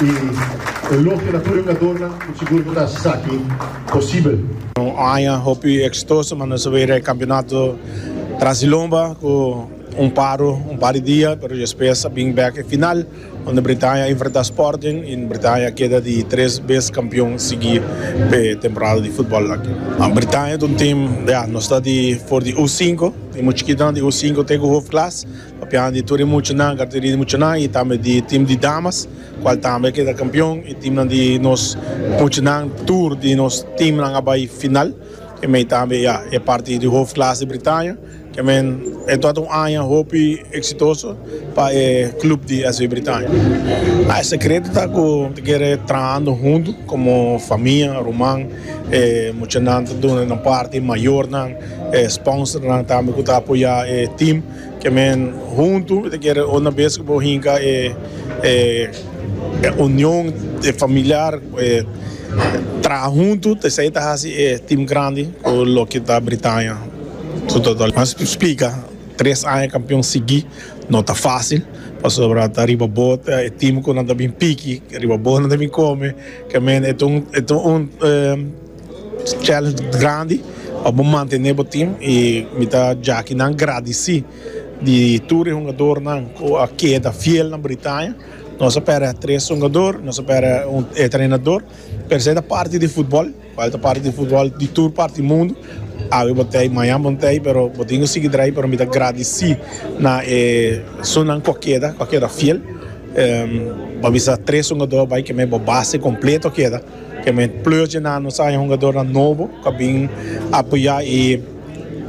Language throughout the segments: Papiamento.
i elogio na tur e jugadornan ku sigur bo ta hasi esaki posibel. Un aña hopi eksitoso manda nos a bira e kampionato Transilomba ku un paro un par di dia pero despes a bin bèk e final unda Britania a enfrentá Sporting i Britania a keda di tres bes kampion sigui p'e temporada di futbòl aki. Britania ta un tim, ya, nos ta di for di U sinku, tin mucha chikinan di U sinku te ku hofklas. Papiando di tur e muchanan, categoria di muchanan y tambe di team di damas, cual tambe a keda campeon y teamnan di nos muchanan, tur di nos teamnan a bay final. E mey tambe ya e partido di hoofdklasse Bretaña, ke men e tabata un aña hopi exitoso pa e club di SV Bretaña. E secreto ta cu ta kere trahando hunto como famia, ruman, e muchanan ta duna nan parti, mayornan, e sponsornan tambe cu ta apoya e team. Ke men huntu mi ta kere una bes ku bo hinka e union e familiar e traha huntu ta esei ta hasi e tim grandi ku lo ke ta Britania su total. Mas splika tres aña kampion sigui no ta fasil pasobra ta riba bo ta e tim ku nan ta bin piki riba bo nan ta bin kome ke men e ta un challenge grandi pa bo mantene bo team y mi ta jaki nan gradisi di tur e hungador nan cu a keda fiel na Britania nos a perde a tres hungador nos a perde e trenador pero esai ta parti di football cual ta parti di football di tur parti di mundo awe bo tey maña bo tey pero bo tin cu sigi draai pero mi ta gradisi na e sunan cu a keda cu a keda fiel pa bisa tres hungador bay keme bo base completo a keda. Ke mi pleur djena nos aña hungadornan nobo ku a bin apoyá i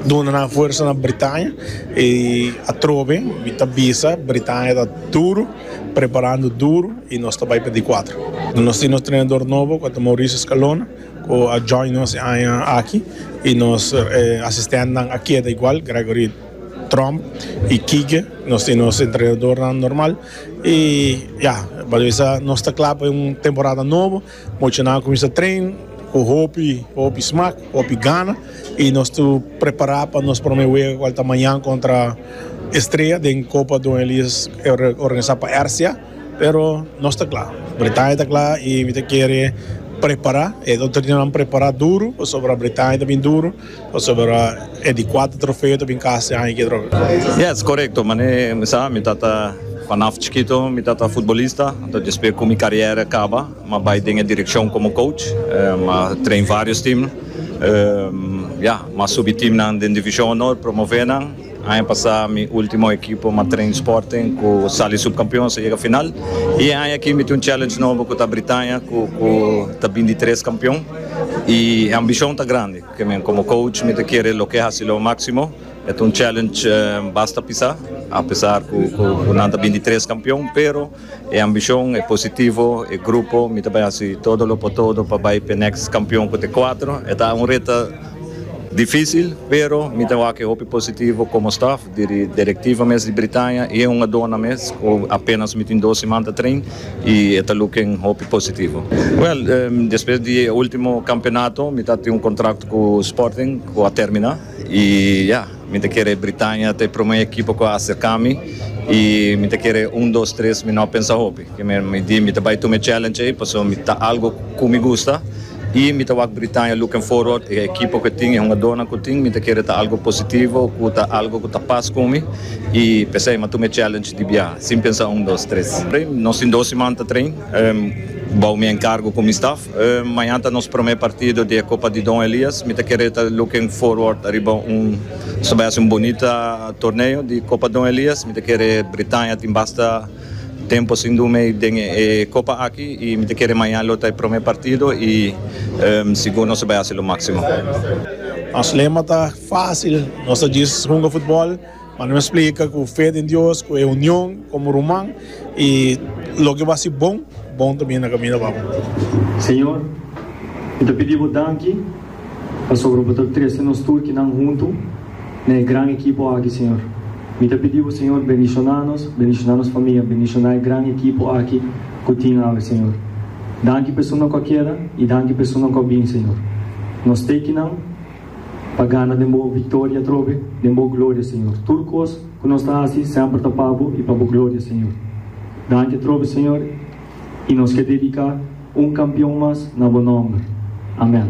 duna nan fuersa na Britania. I atrobe mi ta bisa Britania ta duru preparando duru i nos ta bai pa di kuater. Nos tin nos trenador nobo ku a ta Mauricio Scalona ku a join nos e aña aki i nos asistentnan a keda igual Gregory Tromp i Kike. Nos tin nos entrenadornan normal. I ya, Baloesa nos ta kla pa un temporada nobo. Mochonan a kuminsá tren ku hopi, hopi smak, hopi gana. I nos ta prepará pa nos promé wega ku ta mañan kontra Estrella den Kopa Don Elias organisá pa Ersia. Pero nos ta kla. Bretaña ta kla i mi ta kere prepará. E otro dinanan prepará duru pasobra Bretaña ta bin duru. Pasobra e di kuater trofeo ta bin kas e aña kidròp. Yes, korekto. Manera e mi sa, mi tata, panaf chikito mi tata futbolista, anto despues ku mi karièra kaba m'a bai den e direkshon komo kouch, m'a train vários tim, ya, m'a subi timnan den Divishon Honor, promové nan. Aña pasá mi último ekipo Matrain Sporting ku sali supkampeons a yega final i e aña aki mi tin un challenge nobo ku ta Britania ku ku ta bin di tres kampion i e ambishon ta grandi pasobra mi komo coach mi ta kere loke hasi lo máksimo e ta un challenge basta pisá apesar ku nan ta bin di tres kampion pero. E ambicion, e positivo, e grupo, mi ta bay haci todo lo por todo pa bay p'e next campeon cu ta e cuatro. E ta un reta dificil, pero mi ta wak e hopi positivo como staff, diri directiva mes di Britania y e hungadornan mes cu apenas mi tin dos siman ta train y e ta looking hopi positivo. Well, despues di e ultimo campeonato mi ta haci un contract cu Sporting cu a termina y ya. Mi ta kere Britania ta e prome ekipo ku a aserka mi i mi ta kere un dos tres mi no pensa hopi. Ke mi mi di mi ta bai tuma e challenge ei paso mi ta algo ku mi gusta i mi ta wak Britania looking forward e ekipo ku e tin e hungadónan ku tin mi ta kere ta algo positivo ku ta algo ku ta pas ku mi i p'esei mi a tuma e challenge di bia sin pensa un dos tres. Nos tin dos siman ta train bou mi enkargo ku mi staf. Mañan ta nos prome partido di e Copa di Don Elias. Mi ta kere ta looking forward ariba un su bai a ser un bonita torneo di Copa Don Elias. Mi ta kere Britania tin basta tempo sin dun mei den e copa aki y mi ta kere mañan lo ta e prome partido y sigur nos a bai a hacer lo maximo. Nos lema ta facil, nos ta djis hunga futbol. Ma nos splika ku fe den Dios, ku e union komo ruman i loke bo hasi bon, bon ta bini na kaminda pa bo. Señor, mi ta pidi bo danki pasobra bo ta trese nos tur kinan huntu na e gran ekipo aki, Señor. Mi ta pidi bo, Señor, bendishoná nos, bendishoná nos famia, bendishoná e gran ekipo aki ku tin awe, Señor. Danki pa esunnan ku a keda i danki pa esunnan ku a bin, Señor. Nos te kinan. pa gana den bo victoria atrobe, den bo gloria Señor. Tur cos cu nos ta haci semper ta pa bo y pa bo gloria Señor. Danki atrobe Señor y nos ke dedica un campeon mas na bo nomber. Amen.